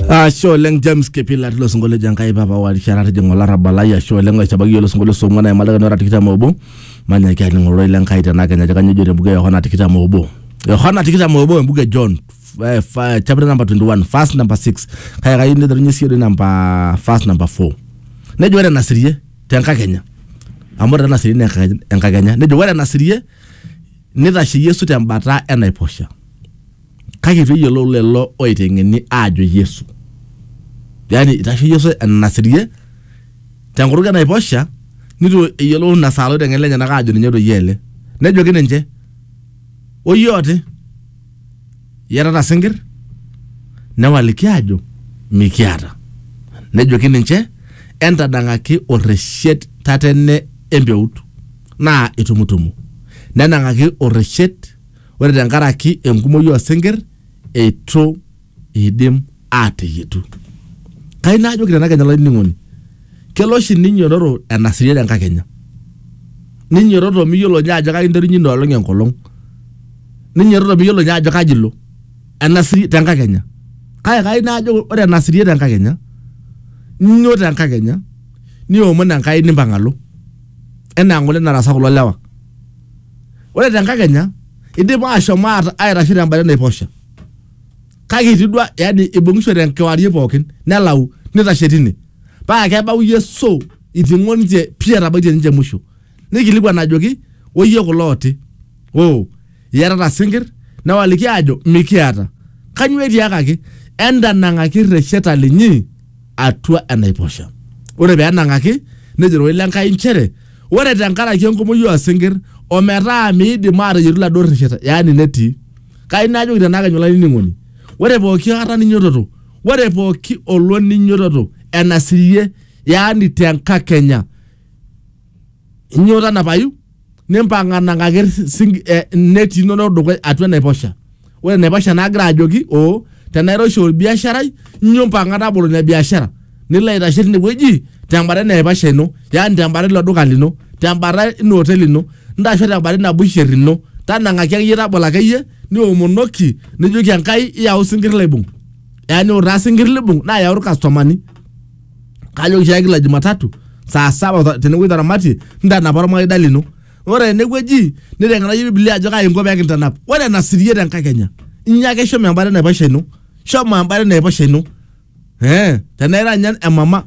ashe oleng james kipila tilo sinkolio ejo enkai papa warishara tijing'a olarrabal lai ashe oleng oisabaki iyolo sinkolio song'uan aimalakani ora tikitam obo manyaki aning ororei le nkai tena kenya ajo kanyoo ejo tembuku e yohana tikitam obo yohana tikitam obo embuku e john eh, fa- chapter number 21 verse number 6 kaya kayieu niterunye sii ore namba verse number 4 nejo ore enasirie tenkakenya amu ore enasirie naa enka- enkakenya nejo ore enasirie nitashe yesu tembata enaiposha Kake eitu eyiolou lelo oiteng'eni aajo Yesu. Yani eitasho Yesu enanasirie tenkutuk e naiposha neitu eyiolou ina saa loiteng'eni lenyenak aajo ninye doi ele. Nejoki ninche, Oyie oti, iyatata sinkir? Newaliki aajo, Mikiata. Nejoki ninche, Entadang'aki orreshet tatene empeut, naa itumutumu. Nenang'aki orreshet Ore tenkaraki enkumoi oo sinkir eitu eidim aateyietu. Kayieu naajoki tena kenya olainining'oni kelo oshi ninyiotoro enaserian enkakenya. Ninyiotoro miyiolo ninye ajo kaji interunyie ina olong enkolong. Ninyiotoro miyiolo ninye ajo kaji ilo enaserian tenkakenya. Kake kayieu naajo ore enaserian tenkakenya inyio tenkakenya niomon Enkai nimpang alo enaa ng'ole nataasa kulo lewa ore tenkakenya idipa aashom aaitasho tembata enaiposha kake etii duo yani ibung'ishote enkewarie pookin nelau nitashe tine paa kebau Yesu iting'o ninche pii etabaitie ninche musho nikilikuan ajoki oyie kulo ooti oo iyatata sinkir newaliki aajo mikiata kanyoo etiakaki entanang'aki irresheta linyi atua enaiposha ore pee enang'aki nejo ororei le Enkai nchere ore tenkaraki enkumoi oosinkir ometaa miidim aateyietu iladuo rresheta yaani netii kai najoki tenakenya olainining'oni ore pooki kata ninyototo ore pooki olong ninyototo enasirie yaani tenkakenya Inyoo tanapayu nimpang'a nang'aki sing- eh, neti inonok dukuya atua enaiposha ore enaiposha naagira ajoki oo tenairoshi olbiasharai inyoo mpang'a tabolo ina biashara nilo aitashe tinewueji tembata enaiposha ino yaani tembata ilo duka lino tembata ina oteli ino ntasho tembata ina busher ino tanang'aki akeyie tabolo akeyie niomonoki nijoki Enkai iyau sinkir laibung yaani ore taa sinkir libung naa yau irkastomani. kajoki oshiake kila Jumatatu saa saba ta- tenewueji taramatie ntanapa ormaida lino ore enewueji niteng'enayie Biblia ajo kai inko pee kintanap ore enasirie tenkakenya inyo ake shomo embata enaiposha ino shomo embata enaiposha ino Eh, tenaa ira ninye emama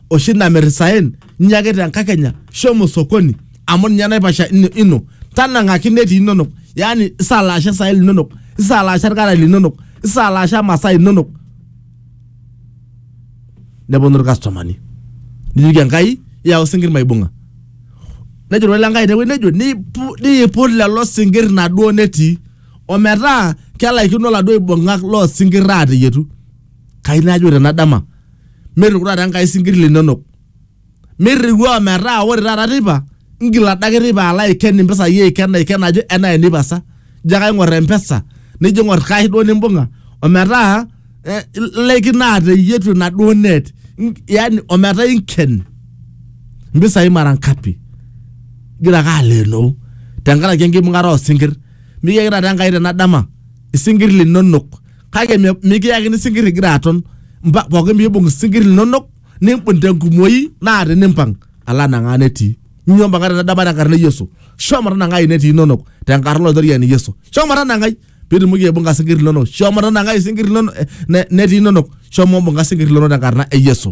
oshi namir isaen inyo ake tenkakenya shomo sokoni amu ninye enaiposha ino- ino tanang'aki netii inonok yaani isalaasha isaen linonok isalaasha irkarae linonok isalaasha masaa inonok neponu irkastomani nijoki enkai iyau isinkir maibung'a nejo role lenkai tewueji nejo "Nipu- niiput lelo sinkir naduo netii ometaa kelaikino laduo aibung'ak loo sinkir ateyietu kai najo ore ena dama metuku taata enkai isinkir linonok Mirriwaa metaa ore taata teipa ngil adake teipa alo aiken impisai aiken aiken ajo enaa eneipasa. Ijo ake aing'or empesa nijo aing'or cash duo nimbung'a ometaa ilaikino ateyietu enaduo net yani ometaa inken impisai mara ngapi igira ake aleenoo tenkaraki enkibung'ata oosinkirr. Mikiyaki taata Enkai tena dama isinkirr linonok kake mikiyakini isinkirr igira aton, pooki piibung' isinkirr linonok nimbun tenkumoi naa tinimpang alo anang'aa netii nyoo mpaka tenedaba tenkarna e yesu shomo tanang'ai netii inonok tenkarna olaitoriani yesu shomo tanang'ai pitumoki aibung'a sinkir linonok shomo tanang'ai sinkir linonok eh, ne- netii inonok shomo mbung'a sinkir linonok tenkarna e yesu